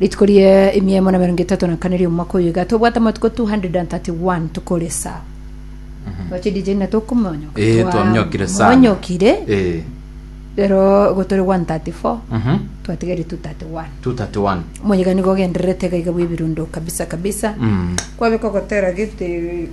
Rituko ria emia emo na emerongo etato na kane ri'omwaka oyoiga tobwate amatuko 231 tokore esaa oche DJ na tokomonyoka Eh, Twa- twamnyokire sana. monyokire Eh, rero gotore 134 mhm. twatigere 231 231 omoyega nigo ogendererete gaiga bw'ebirundo kabisa kabisa Mm. kwabeka ogotera gete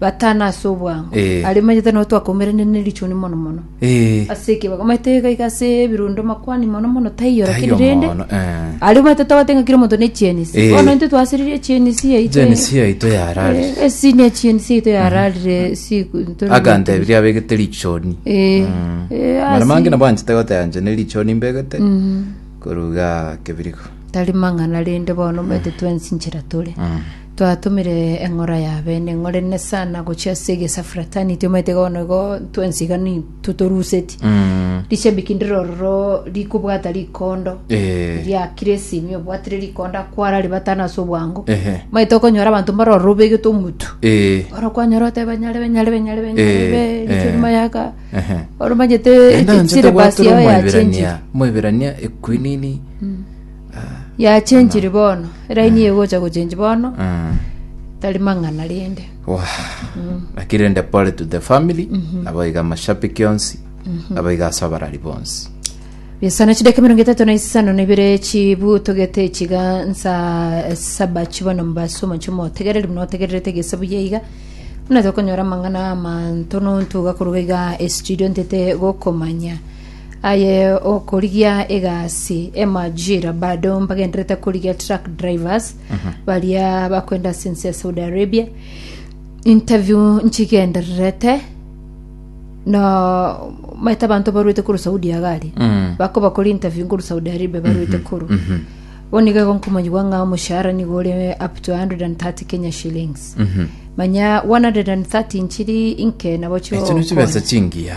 batana ase obwango Eh. aria omanyete nabo twakaumeranirie ne richuni mono mono Eh, ase ekibago omanyete iga iga ase ebirundo makwani mono mono taiyo taiyo lakini rende mono, eh. aria omanyete twabate ng'a kira omonto ne echienisi Eh. bono intwe twasiririe echienisi yaito Jenisi yaito yararire. Eh, esi ne echienisi yaito yararire siku ntore akantebiria abegete richoni Eh, Mm. eh, mara asi- mange nabo anchete goteba nche ne richoni mbegete koruga kebirigo tari mang'ana rende bono omanyete twensinchera tore Mm. Twatomire eng'ora ya bene ng'orene sana gochia ase egesa fraternity omanyete iga bono igo twensi iga ni totoruseti Mm. rishabiki ndire ororo rikobwata rikondo Eh. riakire esimi obwatire rikondo akwara ribatana ase obwango Ehe. omanyete okonyora abanto mbare ororo obegete omotu Eh. oro kwanyora oteba nyare be nyare be nyare be nyare Eh, be eh. riche rimayaka Ehe. oro omanyete Naende anchete syllabus gwatera yao yachenjire Omoiberania, Omoiberania ekwinini Yachenchiri bono, eraini egocha gochenchi bono, tari mang'ana rende. Wah. Naki rende pole to the family nabo iga amashabiki onsi nabo iga ase abarari bonsi Bisana chideka emerongo etato na isano na ibere chibu togete chiga nsa saba chibono mbase omochie motegereri buna otegererete gese buya iga buna tokonyora amang'ana amanto nonto gakoroga iga estudio ntete gokomanya Aye okorigia egasi emajira bado mbagenderete korigia truck drivers baria bakwenda ase ense ya saudi arabia interview nchigendererete no maete abanto barwete koru saudi agare Mm. bakobakoria interview ngoru saudi arabia barwete koru bono iga igo nkomanyigwa ng'a omoshahara nigo ore up to 130 kenya shillings manya 130 nchiri inke nabo chio Echi nichibesa chingiya.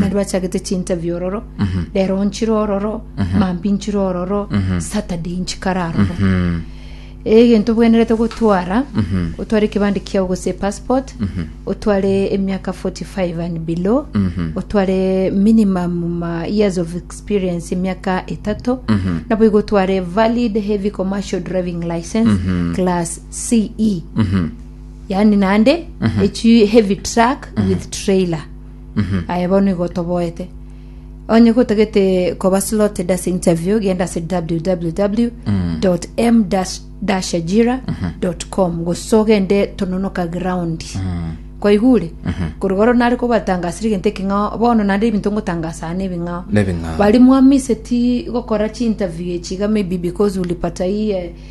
naende bachagete chinterview ororo rero nchire ororo mambi nchire ororo saturday nchikare aroro egento bwenerete gotwara otware ekebande kiao gose passport otware emiaka 45 and below otware minimum ma years of experience emiaka etato nabo igo otware valid heavy commercial driving license class ce yaani naende echi heavy truck with trailer aye bono igo otoboete onye gotagete koba slotted ase interview genda ase www m ajira com gose ogende tononoka ground kwaigure korigoro nare kobatangasire egento eke ng'a bono naende ebinto ngotangasa ne ebing'ao Nebing'ao. bari mwamiseti gokora chi interview echi iga maybe because ulipata hii eh,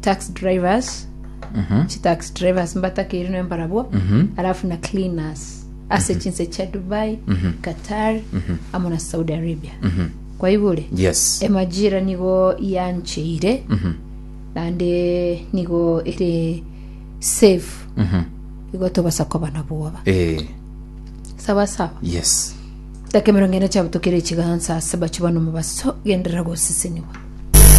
tax drivers chitax drivers mbatakeire noe mbarabwo alafu na cleaners ase chinse chia dubai qatar amo na saudi arabia kwaigure yes emajira nigo yancheire naende nigo ere safe igo tobasa koba na bwoba eh, sawa sawa yes dakika emerongo ene chiabutukire chigansa ase bache bano mobaso genderera goseseniwa